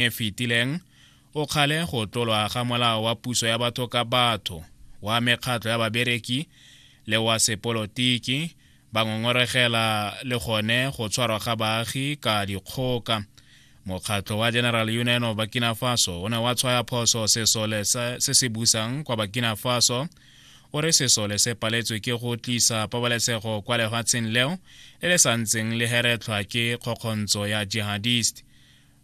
e fetileng o kgale go tlolwa ga molao wa puso ya batho ka batho wa mekgatlho ya babereki le wa sepolotiki ba ngongoregela le gone go tshwarwa ga baagi ka dikgoka mokgatlho wa general union of burkina faso o ne wa tshwaya phoso sesole se se busang kwa burkina faso o re sesole se paletswe ke go tlisa pabalesego kwa lefatsheng leo le le sa ntseng le heretlhwa ke kgokgontsho ya jihadist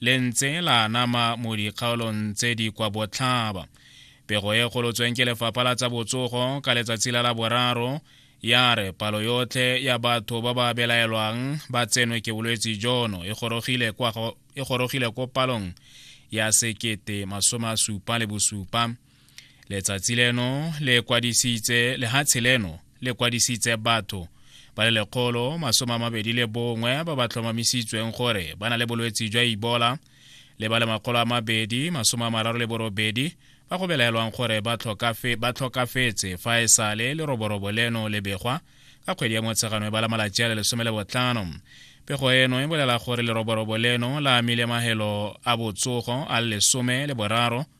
le ntse la anama mo dikgaolong tse di kwa botlhaba pego e golotsweng ke lefapha la tsa botsogo ka letsatsi la laboraro ya re palo yotlhe ya batho ba ba belaelwang ba tsenwe ke bolwetse jono e gorogile e ko palong ya sekete masome a supa le bosupa letsatsi leno le kwadisitse lehatshe leno le kwadisitse batho ba le lekgolo masome a mabedi le bongwe ba ba tlhomamisitsweng gore ba na le bolwetsi jwa ibola le ba le makgolo a mabedi masome a mararo le borobedi ba go belaelwang gore ba tlhokafetse fa e sale le roborobo leno le begwa ka kgwedi ya motshegano e ba la malatsi a le lesome le botlhano pego eno e bolela gore leroborobo leno la amile magelo a botsogo a le lesome le boraro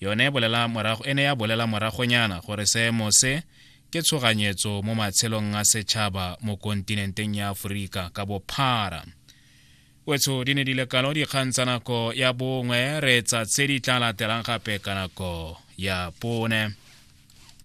yone e bolela morago e ne ya bolela moragonyana gore seemo se ke tshoganyetso mo matshelong a setšhaba mo kontinenteng ya aforika ka bophara wetsho di ne di lekalo dikgang tsa nako ya bongwe re tsa tse di tla latelang gape ka nako ya bone